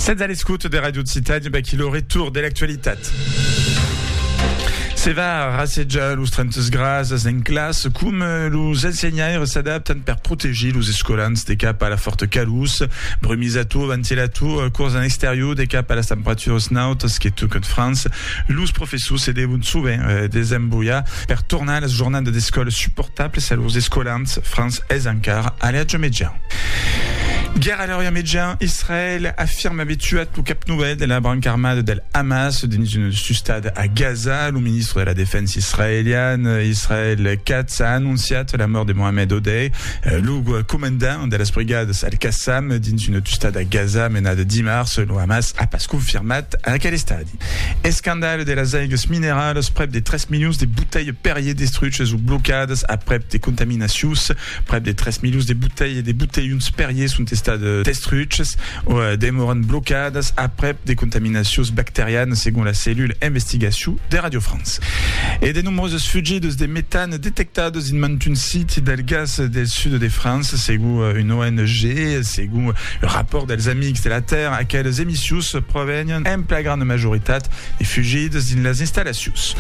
Sètz a l'escouta de Radio Occitània, per aquí lo retour de l'actualitat. Se va rassejar los 30 grasas en classe, com eh, los ensenhaires s'adaptan per protegir los escolans de cap a la forta calús, brumisator, ventilator, eh, cors en exterior de cap a las temperaturas nautas que tocan França, Los professors se devon sovent desembolhar per tornar las jornadas d'escòla suportablas a lors escolans, França es encara a l'atge median. Guèrra a l'atge median, Israèl afirma aver tuat lo cap novèl de la branca armada del Hamas dins una sustada a Gaza. Lo ministre de la Defensa israelian, Israel Katz, a anonciat la mòrt de Mohamed Odeh, lo comandant de las brigadas Al-Qassam dins una tustada a Gaza menada dimars. Lo Hamas a pas confirmat aquel estadi. Escandalh de las aigas mineralas, prèp de 3 milions de botelhs Perrier destruches o blocadas aprèp de contaminacions. Prèp de 3 milions de botelhs de botelhons Perrier son estats destruches o demòran blocadas aprèp de contaminacions bacterianas, segon la cellula investigacion de Radio France. E de nombroses fugidas de metan Detectat dins mantun siti del gas del sud de França, segon una ONG e segon un rapòrt dels Amics de la Tèrra, aqueles emissius provenián en plagrana majoritat de fugidas dins las installacions.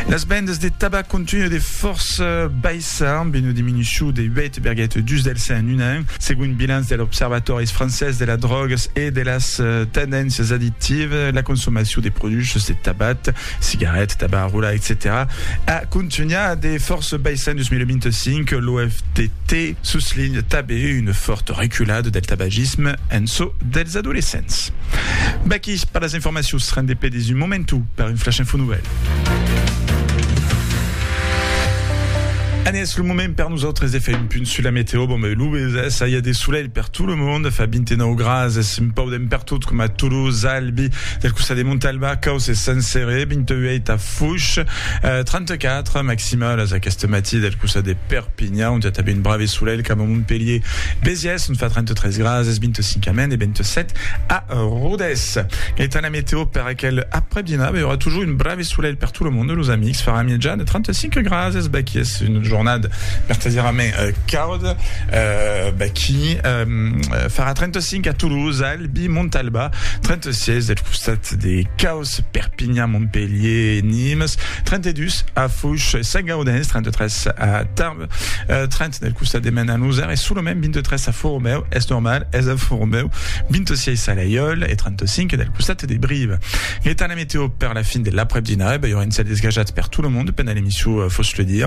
Las vendas de tabac continuen de fòrça baissar, amb una diminucion de 8,2 del cent en un an, segon un bilanç de l'Observatòris francés de las drògas e de las tendéncias addictivas, la consomacion de produchas de tabac cigarèt, tabac a rolar, etcetèra a contunhar de fòrça baissar en 2025, l'OFDT soslinha tanben una fòrta reculada del tabagisme en çò dels adolescents. Vaquí per las informacions, rendé per dins un momentu per un flash info nouvèl. An es lo moment per nosautres de far un punt sus la meteo, bon ben lo bes, ça y a de solelh per tout le monde, fa 29 grases, un pau Ben pertot coma Toulouse, Albi, del costat de Montalba, Caus e Sant Cere, 28 a Foix, 34 maximalas aqueste matí del costat de Perpinha, ont i a tanben un brave solelh, coma Montpelhier, Besiès, ont fa 33 graas, es 25 a Maine e 27 a Rodés. Etant la meteo per aquel après-dinada, i aurà toujours un brave Solelh per tot lo monde, los amics, farà mièja de 35 grads, es bèth es una jornada vertadièrament cauda, bèth farà 35 a Toulouse, Albi, Montalba, 36 deth costat de Caus, Perpinhan, Montpelhier, Nimes, 32 a Fouches e Saint-Gaudens, 33 a Tarbes, 30 del costat de mena nosar es solament 23 a foro meu es normal es a foro meu 26 a l'aiol e 35 del costat de brive l'etat la meteo per la fin de l'après dinarè bai un cel desgajat per tout le monde pendant l'emission euh, fos le dire